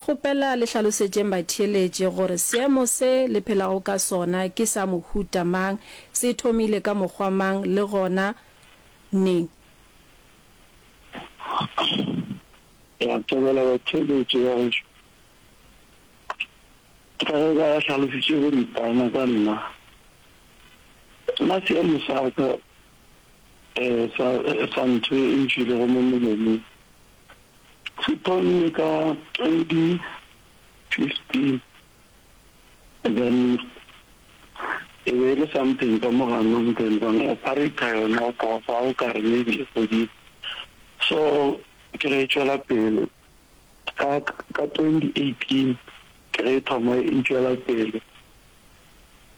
Kgopela le hlalosetšeng batheeletši gore seemo se le phelago ka sona ke sa mohuta mang, se thomile ka mokgwa mang le gona neng. Re a thabela batheeletši ba gešo ka ge ba hlalositše boripana ka nna. Nna seemo sa ka sa ntho e ntšwilego mo molomong. Se thomile ka 2015, then e be e le something ka mo gano then ba no operator yona o ka hwa o ka re maybe e fodile. So ke ge e tšwela pele ka 2018 ke ge e thoma e tšwela pele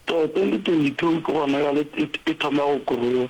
to 2022 ke gona bjale e thoma go grow.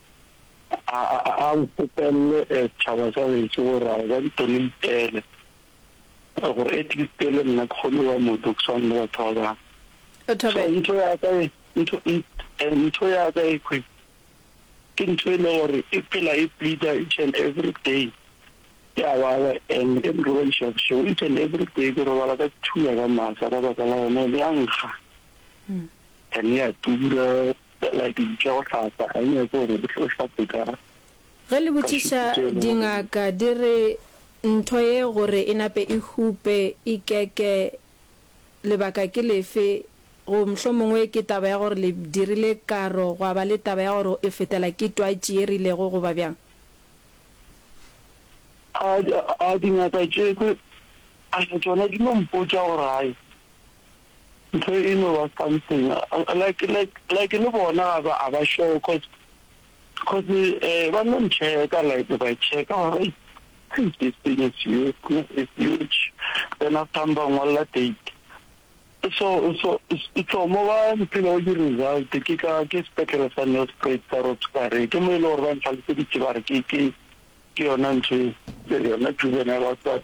A, a, a nkopelele setšhaba sa geso gore a ba di tone lipele gore at least le nna ke kgone go ba motho ke swane le batho ba bangwe. O thobela. So ntho ya ka e, ntho, eh, ntho ya ka e kwe ke ntho e le gore e phela e bleeder each and every day ke a baba and ke nrobadiša bošego each and every day ke robala ka thula ka masa ka baka la yona le ya nkga and ya tura Fela ke bitša go hlapa, ga e nyake gore o hlape ka. Ge le botšiša dingaka di re ntho ye gore e nape e hupe e keke lebaka ke lefe go mohlomongwe ke taba ya gore le dirile karo gwa ba le taba ya gore e fetela ke twatši ye rilego goba bjang? A, a dingaka tše tše, a tšona di no mpotša gore gae. Ntho e no ba something like like like le bona ga ba a ba sure cause cause eh ba no ncheka like ba cheka ba re hey this thing is huge is huge then after ba ngwalla date so so so mo ba mpile o di result ke ka ke sepetlele sa Nelspruit sa Roxbury ke mo e le gore ba ntlhaloseditse ba re ke ke ke yona ntho e yona juvenile assault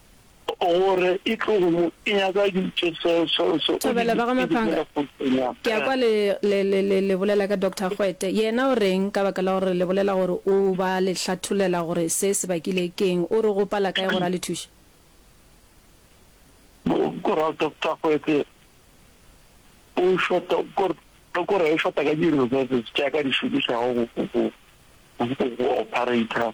gore e tlogo e nyaka ditše seo seo seo Thobela ba ga Maphanga ke a kwa le le le le le bolela ka Doctor Gwete yena o reng ka baka la gore le bolela gore o ba le hlatholela gore se se bakile keng o re go pala kae gore a le thuše gore Doctor Gwete o shota gore gore o shota ka di resources tša ka di šomišago go go go operator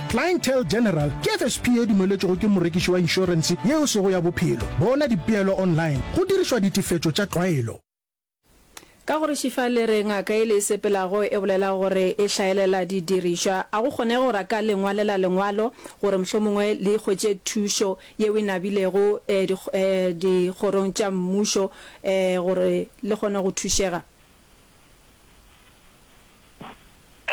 Clientele General ke FSP e dumeletšwego ke morekiši wa inšorense yeo e sego ya bophelo. Bona dipeelo online go dirišwa ditefetšo tša tlwaelo. Ka go re šifa le re ngaka e le e sepelago e bolela gore e hlaelela didirišwa. A go kgonege gore a ka le ngwalela lengwalo gore mohlomongwe le hwetše thušo yeo e nabilego dikgorong tša mmušo gore le kgone go thušega?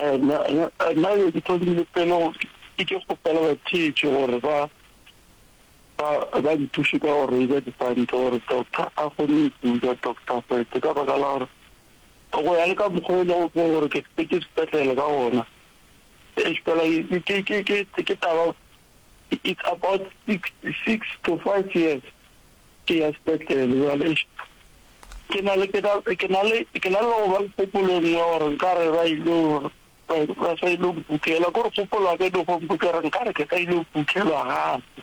Naya ke thomile pele ke ke kgopela batheetši gore ba ba nthuše ka go reiza dipanto gore Doctor a kgone go kuja Doctor Gwete ka baka la gore go ya le ka mokgwa o e lego ke gore ke sepetše sepetlele ka gona. Eish fela ke taba it's about six to five years ke ya sepetlele jwale ke na le ke na ke na le ke na le go ba kgopolong ya gore nka re ba ile ba sa ile go kukela gore kgopolo ka ile go kukela nka re ke ka ile go kukelwa gape